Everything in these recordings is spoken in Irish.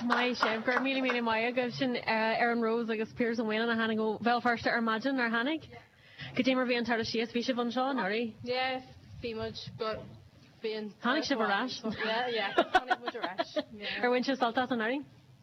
Maith sibh. Go raibh míle míle maith agaibh. Sin Erin Rose agus Piaras Ó Maoileann a tháinig ó Bhéal Feirste ar maidin nár tháinig. Goidé mar a bhí an turas síos bhí sibh anseo anuraidh? Yeah, bhí muid but bhí an turas so ann so yeah, yeah, tháinig muid ar ais. Ar bhain sibh sult as anuraidh?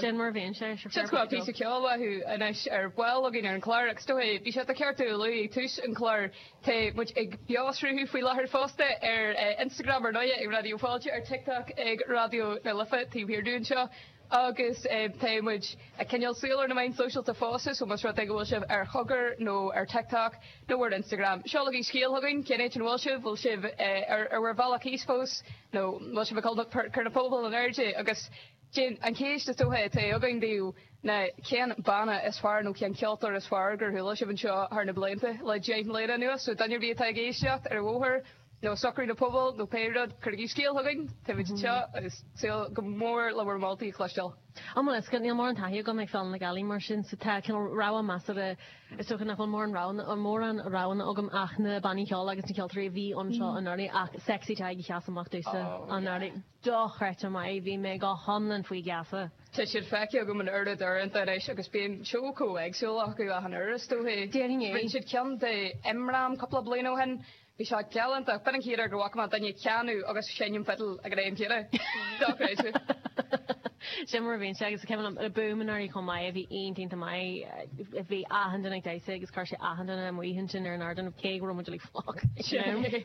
Sin mar a bhíonn sé. Sure, Sin fair chuile play píosa beo ceoil uathu anois ar ball againn ar an chlár agus ar ndóighe ba cheart domh a lua ag tús an chláir tá muid ag beoshruthú faoi láthair fosta ar eh, Instagram ar ndóighe ag Raidió Fáilte ar TikTok ag Raidió na Life taobh thiar dínn anseo agus eh, tá muid ag coinneáil súil ar na meáin sóisialta fosta so más rud é go bhfuil sibh ar chogar nó ar TikTok nó ar Instagram seolaigí scéal chugainn cén áit an bhfuil sibh bhfuil sibh eh, ar, ar bhur bhealach thíos fós nó bhfuil sibh ag cul- cur na bpuball in airde agus Sin an cheist is dóiche atá againn daoibh ná cén banna is fearr nó cén ceoltóir is fearr gur chuala sibh anseo thar na blianta le deich mbliana anuas. So duine ar bith atá ag éisteacht ar an bhóthar nó ag socrú an phubaill nó pé rud, cuirigí scéal chugainn, tagaigí anseo agus ag súil go mór le bhur moltaí a chloisteáil. Anois a Fhearghail, níl mórán taithí agam ag Féile na Gealaí mar sin so tá cineál rogha measartha, is dóiche nach bhfuil mórán rogha, mórán roghanna agam ach na bannaí ceoil agus na ceoltóirí a bhí anseo anuraidh ach Sexy Tadhg a sheas amach domhsa anuraidh. dochreidte maith. Bhí mé go hiomlán faoi gheasa. Tá siad feicthe agam an oiread uaireanta anois agus bíonn seó chomh éagsúil acu achan uair is dóichí. Déarfainn é. Rinne siad ceann do Imram cúpla bliain ó shin. Bhí sé galánta. B'in an chéad uair gur bhfaca mé duine ag canadh agus seinm fidil ag an am céanna. Dochreidte. Sin mar a bhíonn sé. Agus tá ceann eile, Boomerary chomh maith. Bhí iontach iontach maith. Bhí achan duine ag damhsa agus chuir sé achan duine amuigh ansin ar an ardán cé go raibh muid uilig fliuch. Sin é.